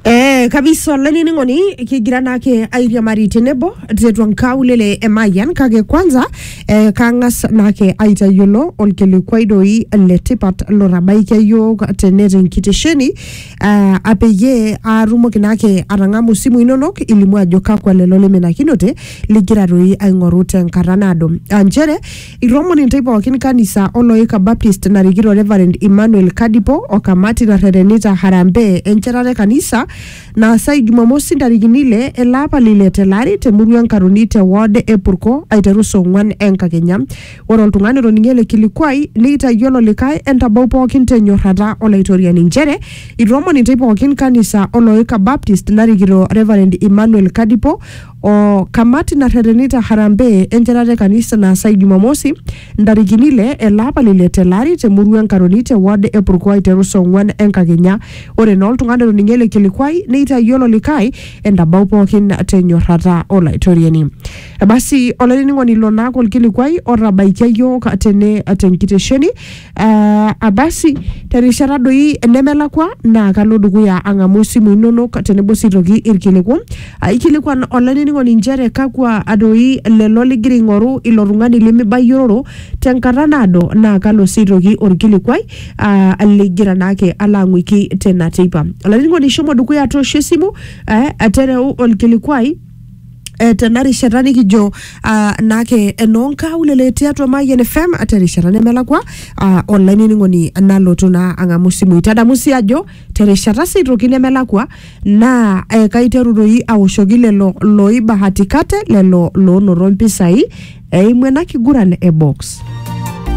Eh, kabisa olainining'oni kigira naake airiamari tenebo tiatua nkaulele e Mayian kake kwanza eh, kang'as naake aitayiolo olkilikuai doi letipat lotabaikia yiok tene tenkitesheni uh, apeyie aatumoki naake atang'amu isimu inonok ilimu ajo kakwa lelo liminakinote ligira toi aing'oru tenkata naado aa nchere itoomon intae pookin kanisa oloika baptist narikito reverend emmanuel kadipo o kamati narretenita harambee enchetata e kanisa naasai jumamosi ntarikini ile ele apa lile tele ari temurua enkaroni te ward e purko aiteru saa ong'wan enkakenya Ore oltung'ani otoning'ie ele kilikuai neitayiolo likae entabau pookin te nyorrata Olaitoriani inchere itoomon intei pookin kanisa o Loika Baptist narikito Reverend Emmanuel Kadipo o kamati narretenita harambee enchetata e kanisa naasai Jumamosi ntarikini ile ele apa le ile tele ari te murua e Nkaroni te ward e Purko aiteru saa ong'uan enkakenya. Ore naa oltung'ani otoning'ie ele kilikuai neitayiolo likae entabau pookin te nyorrata Olaitoriani. Basi olainining'oni ilo naake olkilikuai otabaikia iyiook tene tenkitesheni uh, abasi terishata doi nemelakwa naa kalo dukuya ang'amu isimu inonok tenebo sii toki irkiliku Ah, ikilikuan olainining'oni inchere kakwa doi lelo ligira aing'oru ilo tung'ani limibayiororo tenkata naado naa kalo sii toki orkilikuai ah, ligira naake alo ang'uiki tena teipa olainining'oni shomo dukuya toosho esimu eh, tereu olkilikuai eh, tena rishata nikijo ah, naake enoonkaulele tiatua Mayian FM terishata nemelakwa ah, olainining'oni nalotu naa ang'amu simui. Tadamu sii ajo terishata sii toki nemelakwa naa eh, kaiteru doi aoshoki lelo looibahatikate lelo loonoto mpisai eimu ena kiguran e box.